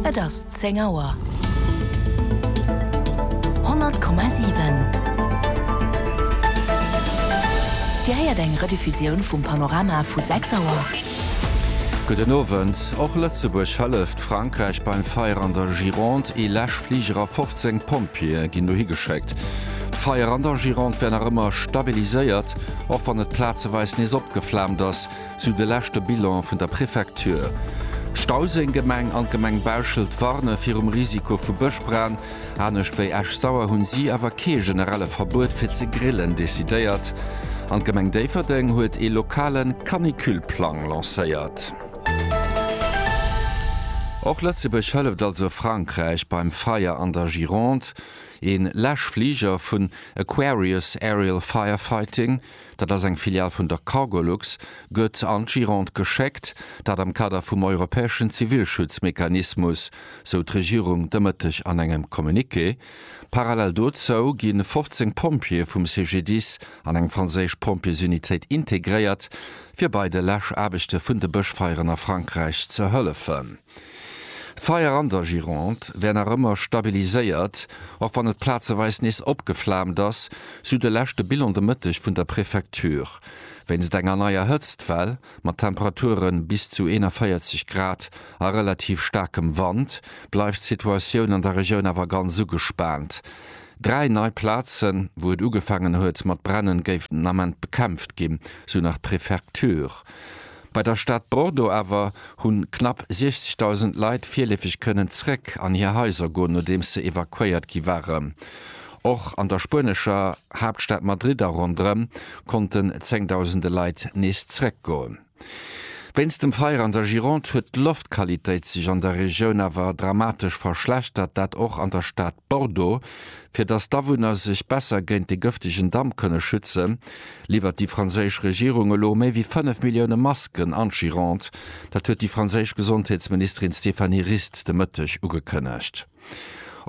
Et ass zéng Auer. 100,7 Dir héiert eng Rediffusioun vum Panorama vu 6 Auer. Gudden Owend. Och Lëtzebuerg hëlleft Frankräich beim Feier an der Gironde. Ee Läschfliger a 15 Pompjeeë ginn dohi geschéckt. D'Feier an der Gironde wär nach ëmmer stabiliséiert, och wann et plazeweis nees opgeflaamt ass. Sou de leschte Bilan vun der Prefecture. D'Stauséng-Gemeng an d'Gemeng Bauschelt warne virum Risiko vu Bëschbran. Anescht wéi Esch-Sauer hunn si awer kee generelle Verbuet fir ze grillen decidéiert. An d'Gemeng Déifferdeng huet ee lokale Canicule-Plang lancéiert. Och Lëtzebuerg hëlleft also Frankräich beim Feier an der Gironde. Ee Läschfliger vun Aquarius Aerial Firefighting. dat ass eng Filial vun der Cargolux, gëtt an d'Gironde geschéckt, dat am Kader vum europäeschen Zivilschutzmechanismus, sou d'Regierung de Mëtteg an engem Communiqué. Parallel dozou gi 15 Pompjeeë vum CGDIS an eng franséisch Pompjeesunitéit integréiert, fir bei de Läschaarbechte vun de Bëschfeieren a Frankräich ze hëllefen. D'Feier an der Gironde wär nach ëmmer stabiliséiert, och wann et plazeweis nees opgeflaamt ass, sou de leschte Bilan de Mëtteg vun der Prefecture. Wéinst enger neier Hëtztwell, mat Temperature bis zu 41 Grad a relativ staarkem Wand, bleift d'Situatioun an der Regioun awer ganz ugespaant. Dräi nei Plazen, wou et ugefaangen huet mat brennen, géifen den Ament bekämpft ginn, sou nach d'Prefecture. Bei der Stad Bordeaux awer hunn knapp 60.000 Leit virleefeg kënnen zréck an hir Haiser goen, nodeems se evakuéiert gi waren. Och an der spuenescher Haaptstad Madrid a rondrëm konnten zengdausende Leit nees zréck goen. Wéinst dem Feier an der Gironde huet d'Loftqualitéit sech an der Regioun awer dramatesch verschlechtert, dat och an der Stad. Bordeaux, Fir datt d'Awunner sech besser géint de gëftegen Damp kënne schützen, liwwert déi franséisch Regierung elo méi wéi 5 Millioune Masken an d'Gironde. Dat huet déi franséisch Gesondheetsministerin Stéphanie Rist de Mëtteg ugekënnegt.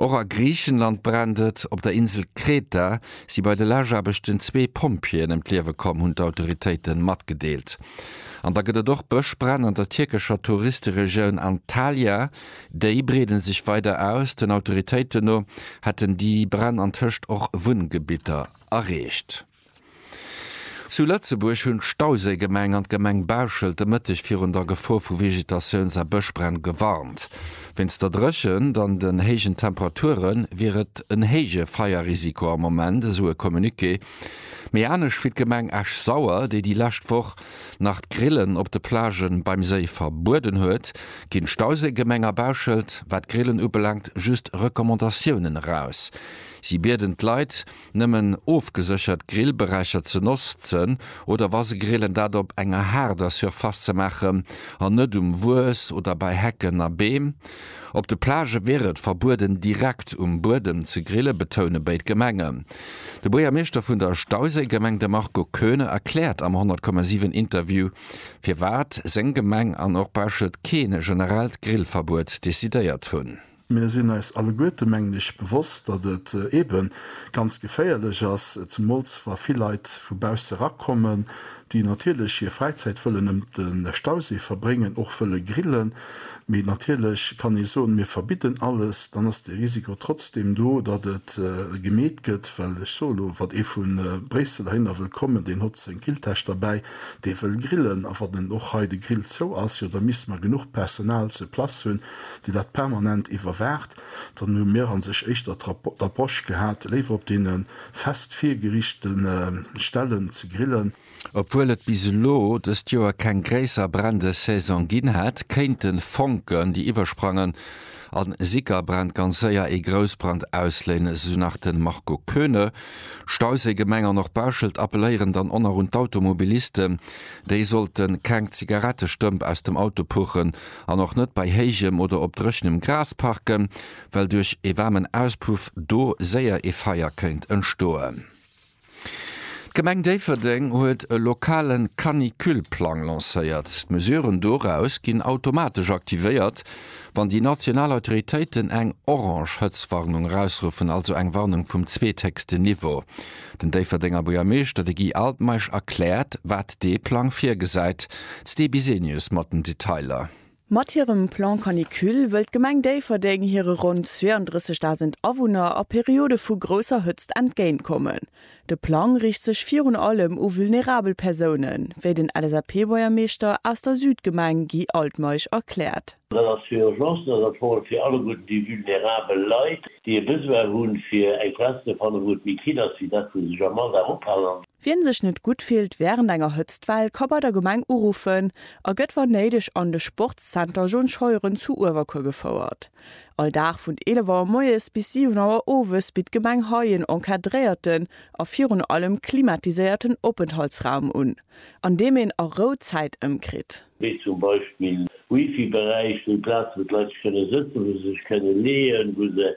Och a Griichenland brennt et. Op der Insel Kreta si bei de Läschaarbechten zwee Pompjeeën ëm d'Liewe komm, hunn d'Autoritéite matgedeelt. An da gëtt et och Bëschbränn an der tierkescher Touristeregioun Antalya. Déi breeden sech weider aus. Den Autoritéiten no hätten déi Bränn antëscht och Wunngebitter erreecht. Zu Lëtzebuerg hunn d'Stauséigemeng an d'Gemeng Bauschelt de Mëtteg virun der Gefor vu Vegetatiouns a Bëschbränn gewarnt. Wéinst der Dréchent an den héijen Temperature wier et en héije Feierrisiko am Moment, esou e Communiqué. Méi anescht wéi d'Gemeng Esch-Sauer, déi déi lescht Woch nach d'Grillen op de Plagen beim Séi verbueden huet, ginn d'Stauséigemeng a Bauschelt, wat d'Grillen ubelaangt, just Recommandatiounen eraus. Si bieden d'Leit, nëmmen ofgeséchert Grillberäicher ze notzen oder wa se grillen, dat op enger haarder Surface ze maachen an net um Wues oder bei Hecken a Beem. Op de Plage wier et verbueden, direkt um Buedem ze grillen, betoune béid Gemengen. De Buergermeeschter vun der Stauséigemeng, de Marco Koeune, erkläert am 100,7 Interview, firwat seng Gemeng an och Bauschelt kee generellt Grillverbuet decidéiert hunn. Mir sinn eis alleguerte, mengen ech, bewosst, datt et eebe ganz geféierlech ass, zemools wa vill Leit vu bausse erakommen, déi natierlech hir Fräizäit wëllen ëm de Stausee verbréngen, och wëlle grillen, mee natierlech kann ee soen, mir verbidden alles, dann ass de Risiko trotzdeem do, datt et gemeet gëtt, well ech soe lo, wat ee vu Bréissel heihinner wëll kommen, deen hott seng Grilltäsch derbäi, dee wëll grillen, a wann en och hei de Grill zou ass, jo da misste mer genuch Personal sur place hunn, déi dat permanent iwwerwaacht, dann hu mir a sech éischter d'Approche gehat, léiwer op deene. Fest virgerichte Stellen ze grillen. Obwuel et bis elo dëst Joer keng gréisser Brändesaison ginn hätt, kéinte Fonken, déi iwwersprangen a Sickerbränn, ganz séier ee Groussbrand ausléinen, esou nach de Marco Koeune. Stausee, Gemeng an och Bauschelt appeléieren dann och nach un d'Automobilisten, déi sollte keng Zigarettestëmp aus dem Auto puchen an och net bei héijem oder op dréchenem Gras parken. well duerch ee waarmen Auspuff do séier ee Feier kéint entstoen. D'Gemeng Déifferdeng huet e lokale Canicule-Plang lancéiert. D'Mesuren doraus ginn automatesch aktivéiert, wann déi national Autoritéiten eng orange Hëtztwarnung erausruffen, also eng Warnung vum zweethéchsten Niveau. Den Déifferdenger Buergermeeschter, de Guy Altmeisch, erkläert, wat dee Plang virgesäit. D'Sti Bisenius mat den Detailer. Mat hirem Plan Canicule wëll d'Gemeng Déifferdeng hire ronn 32.000 Awunner a Periode vu grousser Hëtzt entgéint kommen. De Plang riicht sech virun allem u vulnerabel Persounen, wéi den LSAP-Buergermeeschter aus der Südgemeng Guy Altmeisch erkläert. Dat ass fir Urgencen, dat ass vor allem fir alleguerten déi vulnerabel Leit, déi e Besoin hu fir eng Plaz ze fannen, wou et méi kill ass wéi dat wou se sech am Alldag ophalen. Wien sech net gutt fillt während enger Hëtztwell ka bei der Gemeng uruffen a gëtt wann néideg an de Sportszenter John Scheuren zu Uewerkuer gefouert. All Dag vun 11 Auer moies bis 7 Auer owes bitt d'Gemeng hei en encadréierten a virun allem klimatiséierten Openthaltsraum un, an deem een a Rou Zäit ëmkritt. wéi zum Beispill Wifi-Beräich, wéi Plaze wou d'Leit sech kënne sëtzen, wou se sech kënne leeën, wou se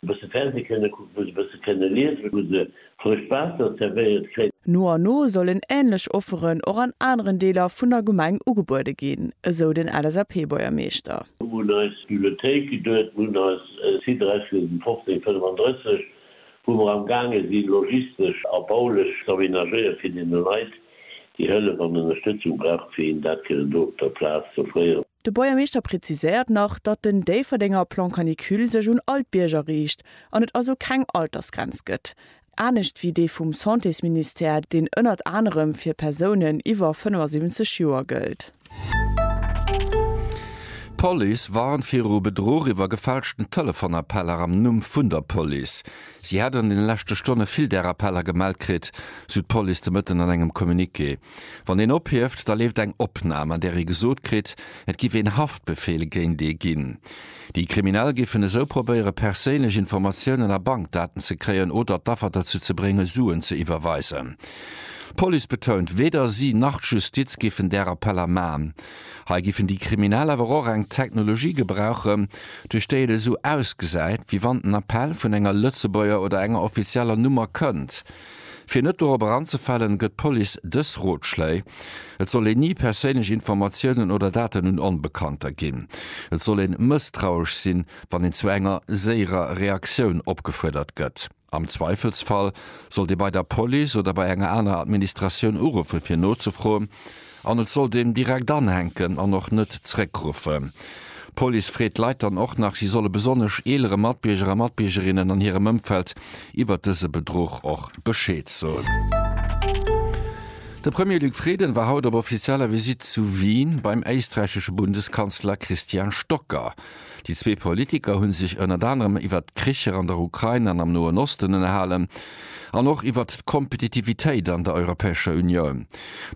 e bësse Fernseh kënne kucken, wou se e bësse kënne liesen, wou se frëscht Waasser zerwéiert kréien. No an no sollen änlech Offeren och an aneren Deeler vun der Gemeng ugebuede ginn, esou den LSAP-Buergermeeschter. Mir hunn eis Bibliothéik geduet, mir hunn eis Site Räichwiesen 1535, wou mer am gaange si logistesch a baulech z'aménagéiere fir deene Leit déi Hëllef an Ënnerstëtzung brauchen, fir hinnen dat kënnen do op der Plaz z'offréieren. De Buergermeeschter präziséiert nach, datt den Déifferdenger Plan Canicule sech un all d'Bierger riicht an et also keng Altersgrenz gëtt, anescht wéi dee vum Santésministère, deen ënnert anerem fir Persounen iwwer 75 Joer gëllt. D'Police warnt viru Bedruch iwwer gefälschten Telefonappeller am Numm vun der Police. Si hätt an deene leschte Stonne vill där Appeller gemellt kritt, sou d'Police de Mëtten an engem Communiqué. Wann een ophieft, da leeft eng Opnam, an där ee gesot kritt, et giff een Haftbefehl géint ee ginn. Déi Kriminell giffen esou probéiere perséinlech Informatiounen a Bankdaten ze kréien oder d'Affer derzou ze bréngen, Suen ze iwwerweisen. D'Police betount, weder si nach d'Justiz giffen där Appeller man. Hei giffen déi Kriminell awer och eng Technologie gebrauchen, duerch déi et esou ausgesäit, wéi wann den Appell vun enger Lëtzebuerger oder enger offizieller Nummer kënnt. Fir net dorobber anzefalen, gëtt d'Police dës Rotschléi, Et soll een ni perséinlech Informatiounen oder Daten un Onbekannter ginn. Et soll een mësstrauesch sinn, wann een zu enger séierer Reaktioun opgefuerdert gëtt. Am Zweifelsfall sollt ee bei der Police oder bei enger aner Administratioun uruffe fir nozefroen, An et sollt een direkt anhänken an och net zréckruffen. D'Police freet d'Leit dann och nach, si solle besonnesch eelere Matbierger a Matbiergerinnen an hirem Ëmfeld iwwert dëse Bedruch och Bescheed soen. De Premier Luc Frieden war haut op offizieller Visitt zu Wien beim éisträichesche Bundeskanzler Christian Stocker. Déi zwee Politiker hu sech ënnert anerem iwwert d'Kricher an der Ukrain an am Noen Osten ënnerhalen, an och iwwert d'Kompetitivitéit an der Europäescher Unioun.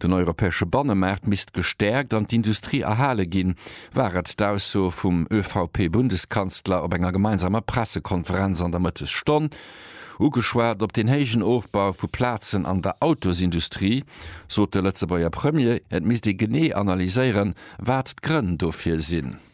Den europäesche Bannemaart misst gestäerkt an d'Industrie erhale ginn, war et d'Ausso vum ÖVP-Bundeskanzler op enger gemeinsamer Pressekonferenz an der Mëttesstonn. Ugeschwat op den héijen Ofbau vu Plazen an der Autosindustrie, sot de Lëtzebuerger Premier, et misst ee genee analyséieren, wat d'Grënn dofir sinn.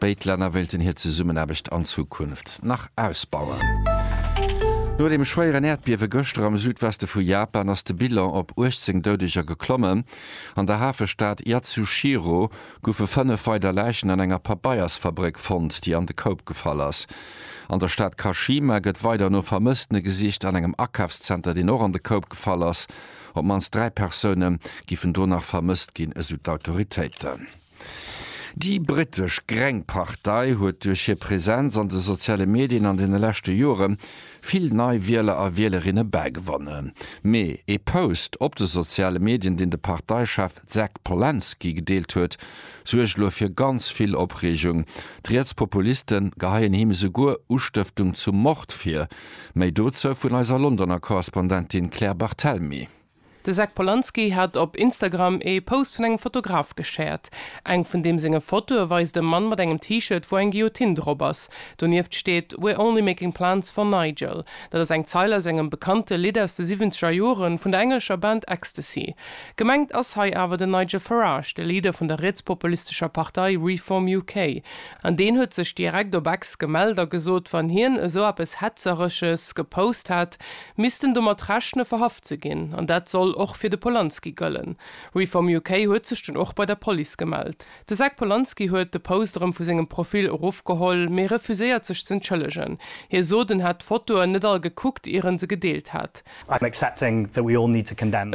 Béid Länner wéilten hir Zesummenaarbecht an Zukunft nach ausbauen. No dem schwéieren Äerdbiewe gëschter am Südweste vu Japan ass de Bilan op 18 Doudeger geklommen. An der Hafestad Yatsushiro goufe fënnef weider Läichen an enger Pabeiersfabréck fonnt, déi an de Koup gefall ass. An der Stad Kashima gëtt weider no Vermësstene gesicht. An engem Akafszenter, deen och an de Koup gefall ass, op d'mannst dräi Persoune giffen do nach vermësst ginn, esou d'Autoritéiten. Déi brittesch gréng Partei huet duerch hir Presenz an de soziale Medien an deene leschte Jore vill nei Wieler a Wielerinne bägewonnen. Mee ee Post op de soziale Medien, deen de Parteichef Jack Polansky gedeelt huet, suergt elo fir ganz vill Opreegung. D'Rietspopuliste geheien him esouguer Ustëftung zum Mord vir. Méi dozou vun eiser Londoner Korrespondentin Claire Barthelmy. De Zach Polanski hat op Instagram ee Post vun engem Fotograf geshared. Eng vun deem senge Fotoe weist e Mann mat engem T-Shirt, wou eng Guillotine drop ass. Donieft steet We're only making plans for Nigel. Dat ass eng Zeil aus engem bekannte Lidd aus de siwwenzeger Joren vun der englescher Band Ecstasy. Gemengt ass hei awer den Nigel Farage, de Leader vun der rietspopulistescher Partei Reform UK. An deen huet sech direkt op Ex gemellt a gesot, wann hien esou eppes Hetzeresches gepost hätt, Missten domat rechne verhaft ze ginn. An dat soll och fir de Polanski gëllen. Reform UK huet sech dunn och bei der Police gemellt. De Zack Polanski huet de Post erëm vu sengem Profil erofgeholl, mee refuséiert sech z'entschëllegen. Hie sot, en hätt d'Fotoen net all gekuckt, ier en se gedeelt hätt.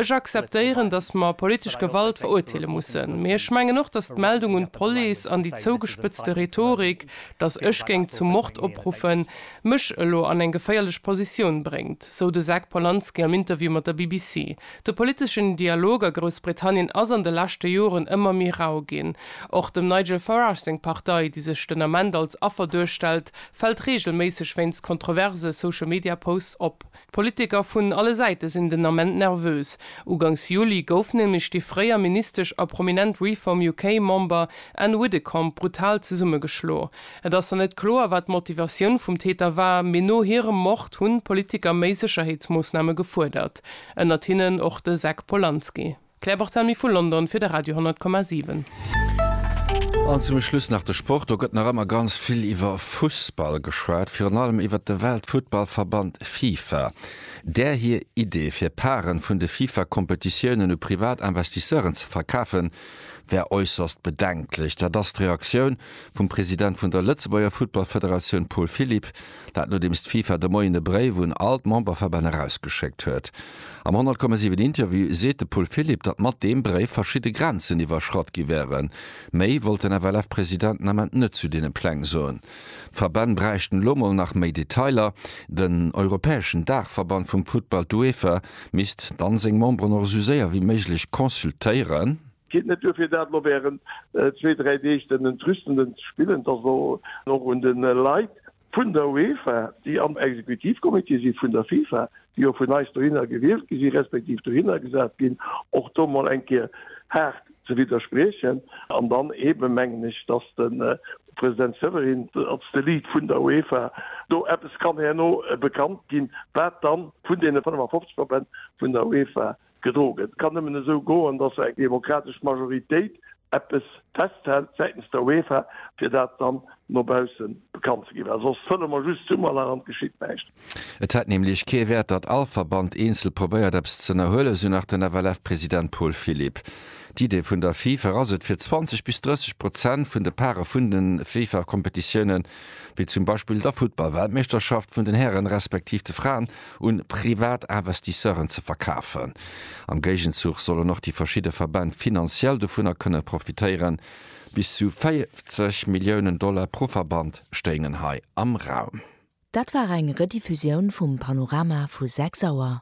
Ech akzeptéieren, datt mer politesch Gewalt verurteele mussen. Mee ech mengen och, datt d'Meldung un d'Police an déi zougespëtzte Rhetorik, datt ech géing zum Mord opruffen, mech elo an eng geféierlech Positioun bréngt, sou de Zac Polanski am Interview mat der BBC. De politeschen Dialog a Groussbritannien ass an de leschte Joren ëmmer méi rau ginn. Och dem Nigel Farage seng Partei, déi sech den Ament als Affer duerstellt, fält reegelméisseg wéinst kontroverse Social-Media-Posts op. D'Politiker vun alle Säite sinn den Ament nervös. Ugangs Juli gouf nämlech déi fréier Ministesch a prominent Reform UK Member Ann Widdecombe brutal zesummegeschlo. Et ass nach net kloer, wat d'Motivatioun vum Täter war, mee no hirem Mord hunn d'Politiker méi Sécherheetsmoossname gefuerdert, ënnert hinnen och de Zack Polanski. Claire Barthelmy vu London fir de Radio 10,7. An zum Schluss nach de Sport. Do gëtt nach ëmmer ganz vill iwwer Fussball geschwat, virun allem iwwert de Weltfuttballverband Fifa. Där hir Idee, fir Parten vun de Fifa-Kompetitiounen u privat Investisseuren ze verkafen, wär äusserst bedenklech. Dat ass d'Reaktioun vum President vun der Lëtzebuerger Futtballfederatioun Paul Philipp Dat nodeems d'FIFA de Moien e Bréif un all d'Memberverbänn erausgeschéckt huet. Am 10,7 Interview seet de Paul Philipp, datt mat deem Bréif verschidde Grenzen iwwerschratt gi wären. Méi wollt den FLF-President den Ament net zu deene Pläng soen. D'Verbänn bräichten elo mol nach méi Detailer. Den europäeschen Daachverband vum Futtball, d'UEFA, misst dann seng Memberen och esou séier wéi méiglech consultéieren. Geet net duer fir dat elo während zwee, dräi Deeg den Entrüstenden ze spillen? Et ass elo och un de Leit vun der UEFA, déi am Exekutivcomité si vun der FIFA, déi jo vun eis dohinner gewielt gi si respektiv dohinner gesat ginn, och do mol eng Kéier haart ze widderspriechen. An dann eebe mengen ech, datt de President Severin als de Lead vun der UEFA do eppes kann herno bekannt ginn, wat dann vun deene 55 Verbänn vun der UEFA Gedroen. Et kann nëmmen esou goen, datt eng demokratesch Majoritéit eppes festhält säitens der UEFA, fir dat dann no baussen bekannt ze ginn, well soss fëlle mer just Summerlach an et geschitt näischt. Et hätt nämlech kee Wäert, datt all Verband eenzel probéiert eppes z'ënnerhuelen, esou nach den FLF-President Paul Philipp. D'Idee vun der FIFA ass et, fir 20 bis 30 Prozent vun de Pare vun de FIFA-Kompetitiounen, wéi zum Beispill der Futtball-Weltmeeschterschaft vun den Hären respektiv de Fraen, un privat Investisseuren ze verkafen. Am Géigenzuch sollen och déi verschidde Verbänn finanziell dovunner kënne profitéieren. Bis zu 40 Milliounen Dollar pro Verband stéingen hei am Raum. Dat war eng Rediffusioun vum Panorama vu 6 Auer.